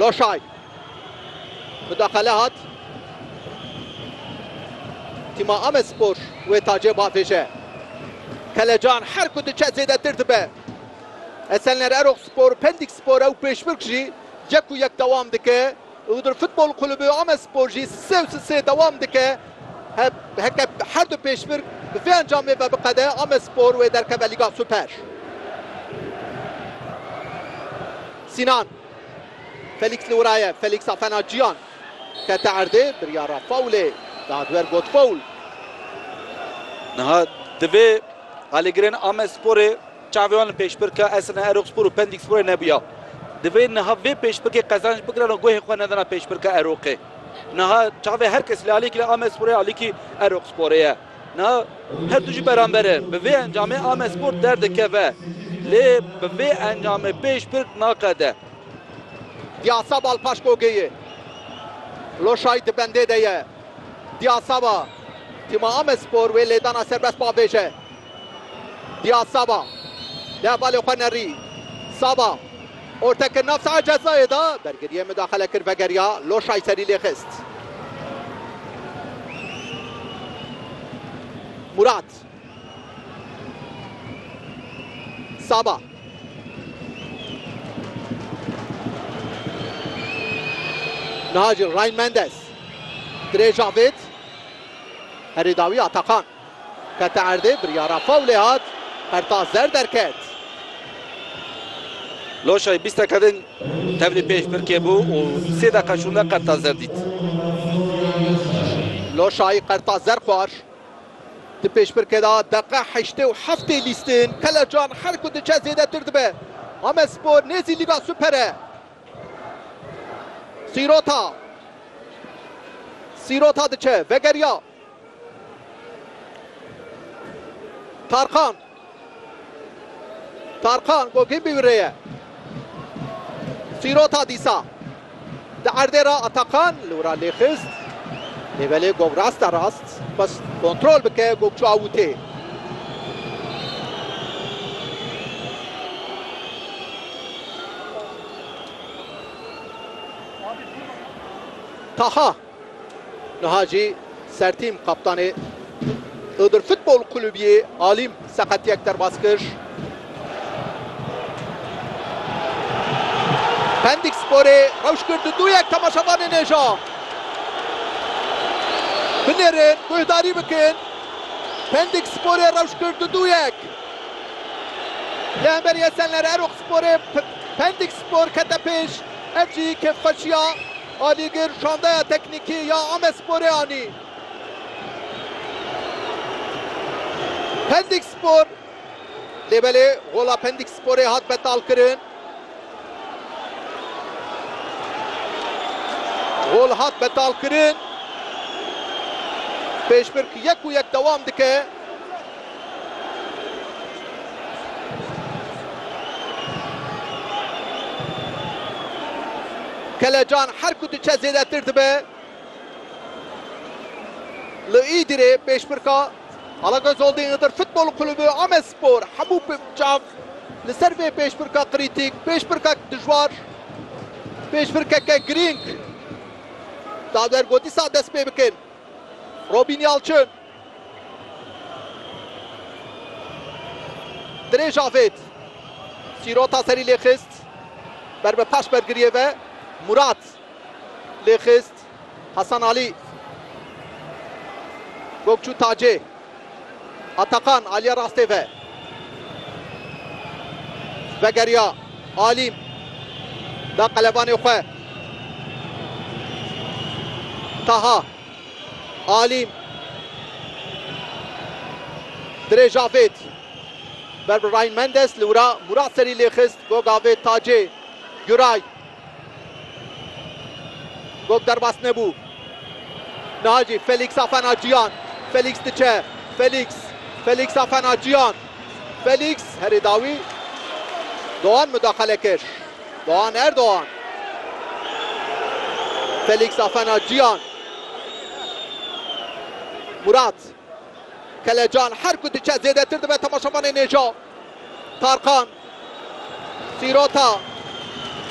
Loşay bi daqele hat. Tîma Amedspor wê tacê bavêje. Kelecan her ku diçe zêdetir dibe. Esenler Erok Spor, Pendik Spor ew pêşbirk jî yek û yek dewam dike. Iğdır Futbol Kulübü Amespor jî sise û sisê dewam dike. Heke her du pêşbirk bi vê encamê ve biqede, Amespor wê derkeve Lîga Super. Sînan. Felîks li wira ye. Felîks a fena ciyan. Kete erdê, biryara fawlê da duer got fawl. Niha divê alîgirên Amesporê Çavê wan li pêşbirka Esena Eroqspor û Pendik Sporê nebûya. Divê niha vê pêşbikê qezanc bigiran û guhê xwe nedana pêşbirka Eroqê. Niha çavê her kes li aliyekî li Amedsporê aliyekî Eroqsporê ye. Niha her du jî beramber in. Bi vê encamê Amedspor derdikeve. Lê bi vê encamê pêşbirk naqede. Diyasaba li paş gogê ye. Loşay di bendê de ye. Diyasaba, tîma Amedspor wê lêdana serbest bavêje. Diyaz Saba li hevalê xwe nerî. Saba orte kir nav saha cezayê de. Bergiriyê mudaxele kir vegeriya. Loşay serî lê xist. Murat. Saba. Niha jî Ryan Mendes. Dirê Cavid. Herî dawî Atakan. Kete erdê, biryara fawlê hat, qerta zer derket. Loşay bîsteke din tevlî pêş pirkê bû û sê deqa şûnde qerta zer dît. Loşay qerta zer xwar. Di pêşpirkê de deqa heştê û heftê bîstin Kelecan her ku diçe zêdetir dibe. Amedspor nêzî Lîga Super e. Sîrota. Sîrota diçe, vegeriya. Tarkan. Tarkan Gogin bi wî ye. Sîrota dîsa. Di erdê ra Atakan li wira lê xist. Lê belê Gog rasta rast. Xwest kontrol bike Gog çû awûtê. Taha. Niha jî sertîm kaptanê Iğdır Futbol Kulübiyê Alim seqetiyek derbas kir. Pendik Sporê rewş kir di du yek temaşevanê nêja. Binêrin guhdarî bikin. Pendik Sporê rewş kir di du yek. Li hemberî Esenler Erok Sporê Pendik Spor kete pêş. Ev jî kêfxweşiya Alîgir şandeya teknîkî ya Amesporê anî. Pendîkspor, lê belê gola Pendîksporê hat betalkirin. Gol hat betalkirin. Pêşbirk yek û yek dewam dike. Kelecan her ku diçe zêdetir dibe li Îdirê pêşbirka Alagöz Holding Iğdır Futbol Kulübü Amedspor hemû çav li ser vê pêşbirka krîtîk, pêşbirkek dijwar, pêşbirkeke girîng da der ku dîsa dest pê bikin. Robîn Yalçin. Dirêj avêt. Sîrota serî lê xist. Ber bi paş bergiriyê ve Murat lê xist. Hasan Alî. Gokçû Tacê. Atakan aliya rastê ve. Vegeriya Alîm. Da qelebanê xwe. Taha. Alî Dirêj avêt ber bi Ryan Mendes li wira Murat serî lê xist gog avêt Tacê Guray gog derbas nebû niha jî Felîks a fena Ciyan Felîks diçe Felîks Felîks a fena Ciyan Felîks herê dawî Doğan mudaxale kir. Doğan Erdoğan. Felix Afena Ciyan. Murat. Kelecan her ku diçe zêdetir dibe temaşevanê nêja. Tarkan. Sîrota.